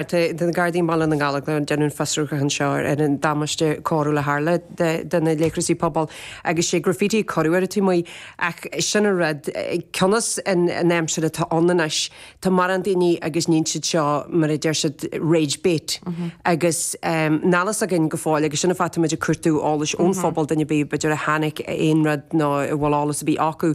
de na Gardaí i mBaile na nGallóglach. Déanamh fiosrúchán anseo ar an damáiste coiriúil a tharla do na leithreasaí pobail agus sé graffiti a cuireadh ar an taobh amuigh. Ach sin an rud. Cionnas an aimsir atá ann anois, tá morán daoine agus níonn siad seo, mar a deir siad, rage bait. Agus níl fhios againn go fóill, agus sin an fáth tá muid ag cuartú eolais ón phobal, duine ar bith b'fhéidir a chonaic aon rud nó a bhfuil eolas ar bith acu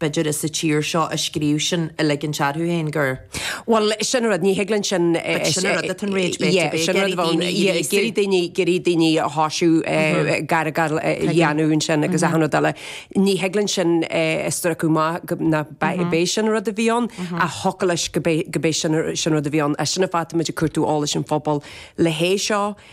B'fhéidir daoine sa tír seo a scríobh sin ag ligint orthu féin gur. Bhuel, sin an rud, ní thig linn sin. But sin an rud atá an rage bait, yeah, sin an rud atá an, yeah, ag iarraidh daoine, ag iarraidh daoine a thoisiú, ag argáil a dhéanamh ansin agus achan rud eile. Ní thig linn sin a stracadh amach go, nach b'é sin an rud a bhí ann, ach thiocfadh leis gurb é, gurb é sin an rud a bhí ann. Agus sin an fáth, táimid ag cuartú eolais ón phobal le hé seo.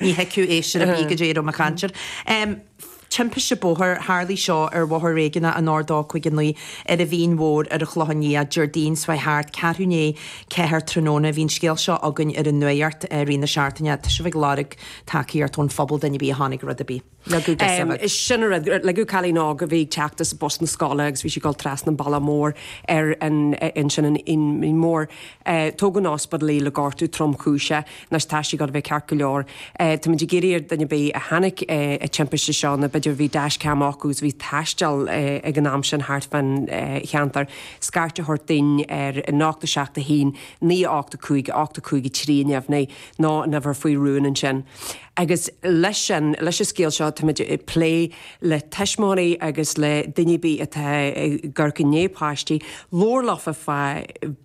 Ní thuigfeadh é sin ar bith goidé a raibh mé ag caint air. Timpiste bóthair, Tharlaigh seo ar Bhóthar Réigiúnach an R259 ar an Mhín Mhór ar an Chlochán Liath Déardaoin seo chuaigh thart ceathrú i ndiaidh a ceathair tráthnóna. Bhí an scéal seo againn ar an Nuacht i rith na seachtaine. Tá sibh ag lorg tacaíocht ón phobal duine ar bith a chonaic rud ar bith. Leagadh de sa. Is sin an rud. Leagadh cailín óg a bhí ag teacht as bus na scoile agus bhí sí ag dul trasna an bhealaigh mhóir ar an, ansin an Mhín Mhór. Tugadh chun ospidéil í le gortú tromchúiseach. Anois tá sí ag gabháil a bheith ceart go leor. Táimid ag iarraidh ar duine ar bith a chonaic an timpiste seo nó b'fhéidir bhí dash-cam acu agus bhí ag taisteal ag an am sin thart fán cheantar, scairt a thabhairt dúinn ar 871 985 85 3 a neamhní, ná an uimhir faoi rún ansin. Agus leis an scéal seo táimid ag plé le tuismitheoirí agus le daoine atá ag amharc i ndiaidh páistí, labhairt leofa fá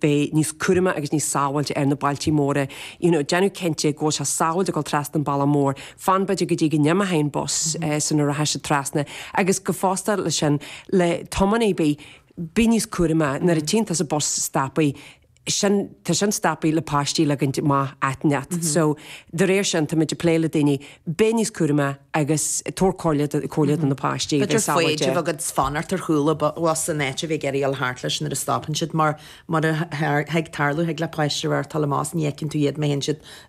bheith níos cúramaí agus níos sábháilte ar na bealtaí móra. You know, déanamh cinnte go bhfuil sé sábháilte a dhul trasna an bealach mór, fan b'fhéidir go dtí go n-imeoidh an bus sula rachaidh siad trasna. Agus go fosta leis sin, le tiománaí, bí níos cúramaí, nuair a tchíonn tusa bus stopthaí. sin, tá sin stopthaí le páistí a ligint amach áit inteacht. So, de réir sin, táimid ag plé le daoine, bheith níos cúramaí agus tabhair comhairle do comhairle do na páistí, bheith B'fhéidir sábháilte. foighid a bheith agat fanacht ar chúl an bhus in áit a bheith ag iarraidh a ghabháil thart leis nuair a stopann siad mar mar a thig tarlú thig le páiste a bheith ar tollamhás ní fheiceann tú iad má théann siad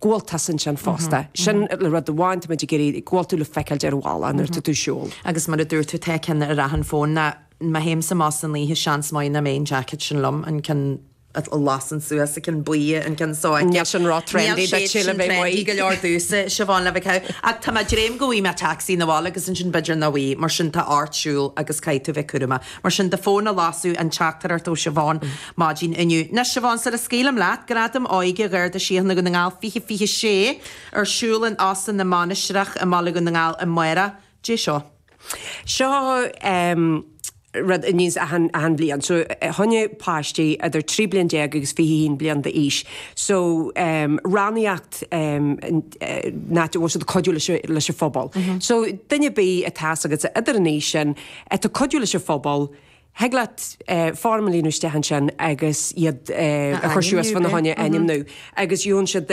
gabháltas ansin fosta. Sin rud amháin, táimid ag iarraidh go bhfuil tú le feiceáilt ar an bhealach nuair atá tú ag siúl. Agus mar a dúirt tú, tá ceann ar achan fón ná má théimse amach san oíche, seans maith nach mbeidh an jacket sin liom, an ceann a lasann suas, an ceann buí, an ceann seo. Níl sin ró trendy duitse le bheith amuigh. Níl siad sin trendy go leor domhsa, Siobhán, le bheith ceann. Ach tá mé ag dréim go bhfaighidh mé tacsaí 'na bhaile agus ansin b'fhéidir nach bhfaighidh, mar sin tá ort siúl agus caithfidh tú bheith cúramach. Mar sin de, fuair muid an teachtaireacht ó Siobhán maidin inniu. Anois, Siobhán, sula scaoilim leat, Gradaim Óige Gharda Síochána Dhún na nGall 2026 ar siúl in Óstán na Mainistreach i mBaile Dhún na nGall amárach, Caidé seo. Seo rud a ghníos muid achan bhliain. So, fá choinne páistí idir 13 bliain agus 21 bliain d'aois so rannaíocht ina bhfuil siad ag cuidiú leis an phobal. So, duine ar bith atá agat idir an aois sin, atá ag cuidiú leis an phobal, thig leat foirm a líonadh isteach ansin agus iad a chur suas fána choinne ainmniú agus gheobhann siad